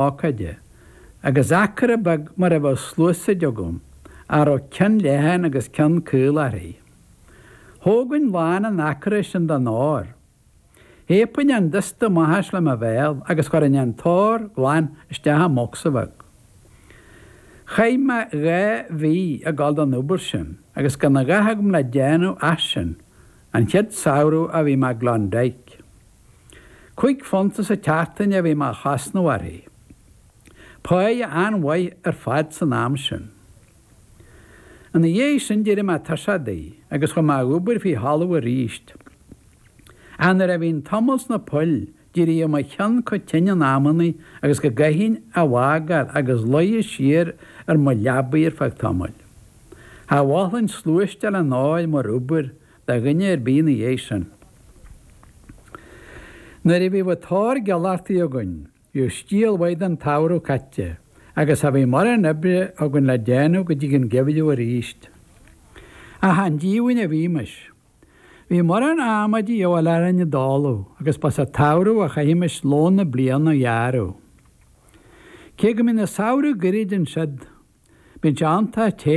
ócáide, agus acra beag mar a bheadh sluasaid agam, a raibh ceann leathan agus ceann caol uirthi. Thógainn lán an acra sin den ór. Shéidinn an dusta amach as le mo bhéal agus chuirinn an t-ór glan isteach i mbocsa bheag. Chaith mé dhá mhí ag dul don obair sin agus gan a dhath agam le déanamh ach sin, an chéad samhradh a bhí mé i gClondyke. Cúig phunta sa tseachtain a bhí mé a chosnamh uirthi. Páighe an-mhaith ar fad san am sin. Ina dhiaidh sin d'éirigh mé tuirseach di agus chuaigh mé a dh'obair faoi thalamh arís. Ach nuair a bhínn tamall sna poill d'éiríodh mo cheann chomh tinn in amannaí agus go gcaithfinn a bhfágáil agus luí siar ar mo leabaidh ar feadh tamaill. Cha mholfainn sluaiste le n-áil mar obair do dhuine ar bith ina dhiaidh sin. Nuair a bhíodh an t-ór dealaithe againn bhíodh stiall mhaith den tsamhradh caite agus cha bhíodh mórán oibre againn le déanamh go dtí an geimhreadh arís. Ach chan díomhaoin a bhímis. Bhí mórán adhmaid de dhíobháil orainn i dtólamh agus ba sa tsamhradh a chaithimis lón na bliana a ghearradh. Cé go mbíonn an samhradh goirid ansiud bíonn sé iontach te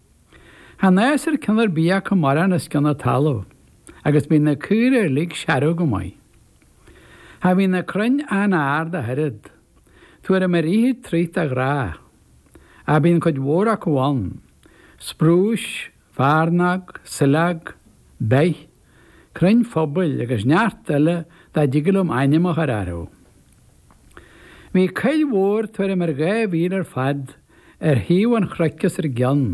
Chan fhásann ceann ar bith acu mórán os cionn na talamh agus bíonn na caora uilig searbh go maith. Cha bhíonn na crainn an-ard ach oiread. Tuairim ar fhiche troigh de ghnáth. Ach bíonn cuid mhór acu ann. Sprúis, fearnóg, saileog, beith. crainn phobail agus neart eile nach dtig liom ainm a chur orthu. Bhí coill mhór tuairim ar dhá mhíle ar fad ar thaobh an chnoic os ár gcionn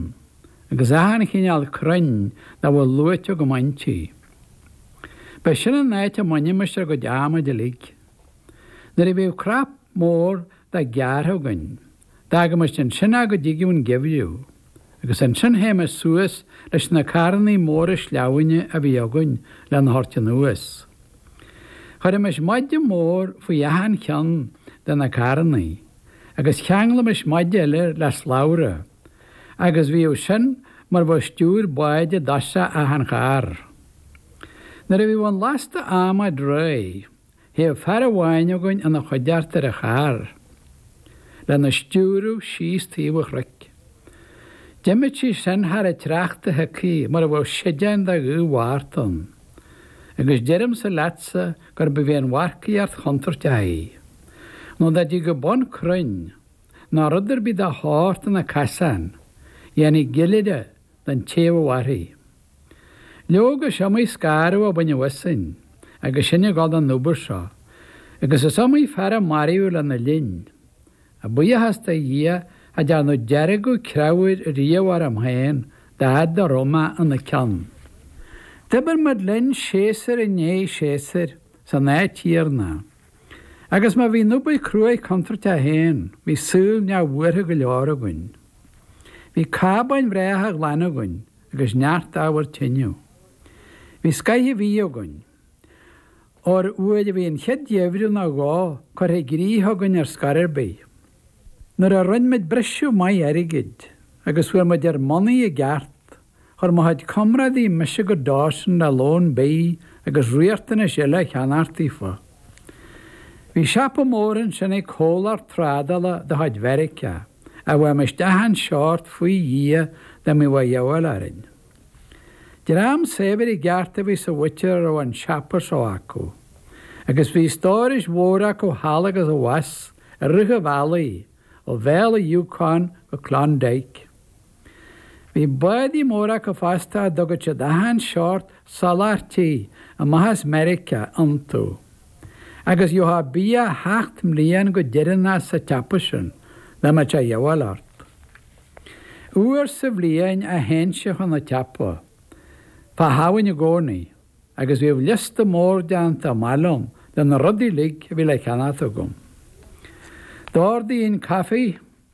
agus achan chineál crainn dá bhfuil luaite agam inti. Ba sin an áit a mbainimis ár gcuid adhmaid uilig. Nuair a bhíodh crap mór de gearrtha againn D'fhágaimis ansin é go dtigeadh an geimhreadh agus ansin théimis suas leis na carrannaí móra sleamhnáin a bhí againn lena thabhairt anuas. Chuirimis maide mór faoi achan cheann de na carrannaí agus cheanglaimis maide eile air le slabhra agus bhíodh sin mar bheadh stiúir báid i dtoiseach achan charr. Nuair a bhíodh an lasta adhmaid réidh. Théadh fear amháin againn ina choigeart ar an charr, lena stiúradh síos taobh an chnoic. D'imíodh sí sin thar an tsneachta shioctha mar a bheadh séideán de ghaoth Mhárta ann, agus deirimse leatsa gurbh í an mharcaíocht chontúirteach í. Nó dá dtigeadh bun crainn, ná rud ar bith dá shórt ina casán, dhéanfaí ciolar, don té a mhairfidh. Leoga, is iomaí scanradh a baineadh asainn agus sinn ag gabháil don obair seo, agus is iomaí fear a maraíodh lena linn. Ach buíochas do Dhia cha dearnadh deargadh creabhair riamh orm féin dá fhad a raibh mé ina ceann. D'oibir muid linn séasúr i ndiaidh séasúir san áit chéanna, agus má bhí an obair cruaidh contúirteach féin bhí saol neamhbhuartha go leor againn. Bhí cábáin bhreátha ghlana againn agus neart ábhar tineadh. Bhí scoith an bhídh againn. Ón uair a bhí an chéad gheimhreadh ná dhó curtha i gcrích againn ar scor ar bith. Nuair a rinne muid briseadh maith airgid agus fuair muid ár mbonnaí i gceart, Chuir mo chuid comrádaí mise go Dawson le lón bidh agus riachtanais eile a cheannacht daofa. Bhí siopa mór ansin ag comhlacht trádála de chuid Mheiriceá a bhfaighimis achan seort faoi Dhia dá mbeadh a dhíobháil orainn. Dream saibhir i gceart a bhí sa mhuintir a raibh an siopa so acu agus bhí stórais mhóra acu thall agus abhus i rith an bhealaigh ó Bhéal an Yukon go Klondike. Bhí bádaí móra acu fosta a dtugadh siad achan seort soláthairtí amach as Meiriceá iontu. Agus gheobhthá bia sheacht mbliain go deireanach sa tsiopa sin dá mbeadh sé a dhíobháil ort. Uair sa bhliain a théinnse chun an tsiopa, fá Shamhain i gcónaí, agus bhíodh liosta mór déanta amach liom de na rudaí uilig a bhí le ceannacht agam. D'ordaínn caife.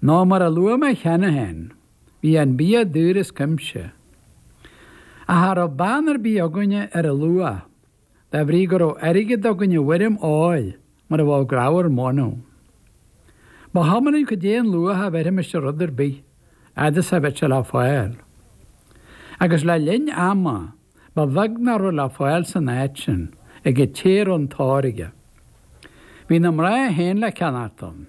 Nó mar a luaigh mé cheana féin, bhí an bia daor as cuimse. Ach cha raibh beann ar bith againne ar a luach, de bhrí go raibh airgead againn i bhfoirm óir mar a bheadh grabhar móna. Ba chuma linn cad é an luach a bheirfimis ar rud ar bith, fhad is a bheadh sé le fáil. Agus le linn ama, ba bheag nach raibh le fáil san áit sin, ag an té a raibh an t-ór aige. Bhí na mná féin le ceannach ann.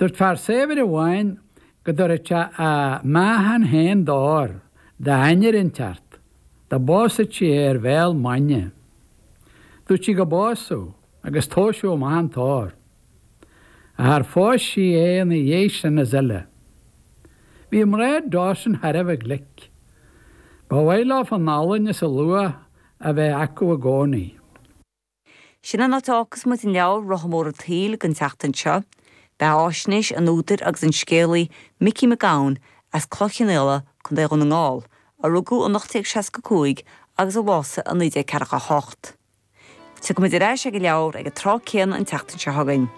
Dúirt fear saibhir amháin go dtabharfadh sé a meáchan féin d'ór d'ainnir inteacht, dá bpósfadh sí é ar bhéal maidne. Dúirt sí go bpósfadh agus tomhaiseadh amach an t-ór. Ach char phós sí é ina dhiaidh sin is uile. Bhí mná Dawson thar a bheith glic. Ba mhaith leofa an olann is a luach a bheith acu i gcónaí. Sin an áit a fhágfas muid an leabhar Rotha Mór an tSaoil don tseachtain seo. Beathaisnéis an údair agus an scéalaí Micí Mac Gabhann as Cloich Chionnaola, Co. Dhún na nGall, a rugadh in 1865 agus a bhásaigh in 1948. Tiocfaidh muid ar ais ag an leabhar ag an tráth céanna an tseachtain seo chugainn.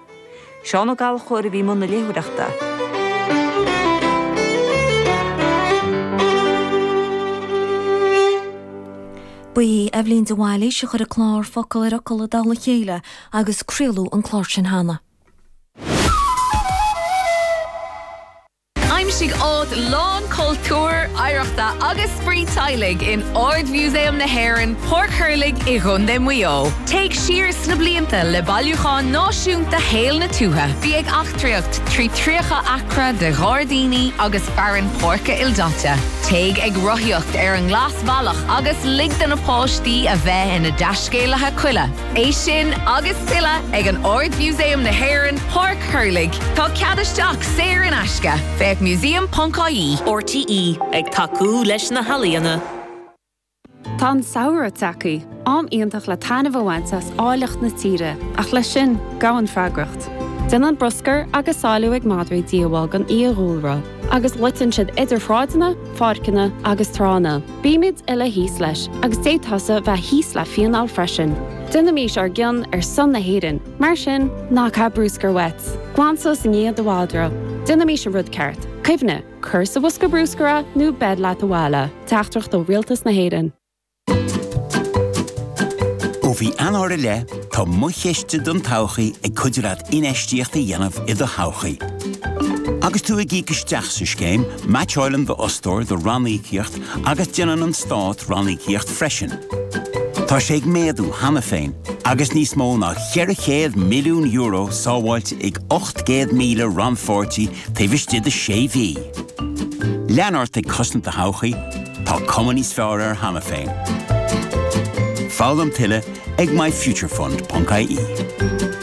Seán Ó Gallchóir a bhí i mbun na léitheoireachta. Ba í Eibhlín de Bhailís a chuir an clár Focal ar Fhocal i dtoll a chéile agus craoladh an clár sin cheana. Aimsigh áit lán cultúir, oidhreachta agus spraoi teaghlaigh in Ard-Mhúsaem na hÉireann, Páirc Thurlaigh i gContae Mhaigh Eo. Téigh siar sna blianta le Bailiúchán Náisiúnta Shaol na Tuaithe. Bí ag eachtraíocht trí 30 acra de ghairdíní agus fearann páirce ildaite. Téigh ag rothaíocht ar an nGlasbhealach agus lig do na páistí a bheith ina dtaiscéalaithe coille. É sin agus tuilleadh ag an Ard-Mhúsaem na hÉireann, Páirc Thurlaigh. Tá cead isteach saor in aisce. Féach museum.ie. RTÉ ag tacú leis na healaíona. Tá an samhradh tagtha, am iontach le taitneamh a bhaint as áilleacht na tíre, ach leis sin, gabhann freagracht. Déanann bruscar agus salú ag madraí díobháil don fhiadhúlra. agus loiteann siad idir shráideanna, pháirceanna agus tránna. Bímid uile thíos leis agus d'fhéadfadh tusa bheith thíos le fíneáil freisin. Déanaimís ár gcion ar son na hÉireann, mar sin, ná caith bruscar uait. Glan suas i ndiaidh do mhadra. Déanaimís an rud ceart. Cuimhnigh, cuir sa bhosca bruscair é nó beir leat abhaile. Teachtaireacht ó Rialtas na hÉireann. Ó mhí Eanáir i leith, tá Mo Chiste don todhchaí ag cuidiú leat infheistíocht a dhéanamh i do thodhchaí. Agus tú ag íoc isteach sa scéim, meaitseálann d'fhostóir do ranníocaíocht agus déanann an Stát ranníocaíocht freisin. Tá sé ag méadú cheana féin agus níos mó ná €400 milliún sábháilte ag 800,000 rannpháirtí taobh istigh de sé mhí. Lean ort ag cosaint do thodhchaí, tá cuma níos fearr air cheana féin. Foghlaim tuilleadh ag myfuturefund.ie.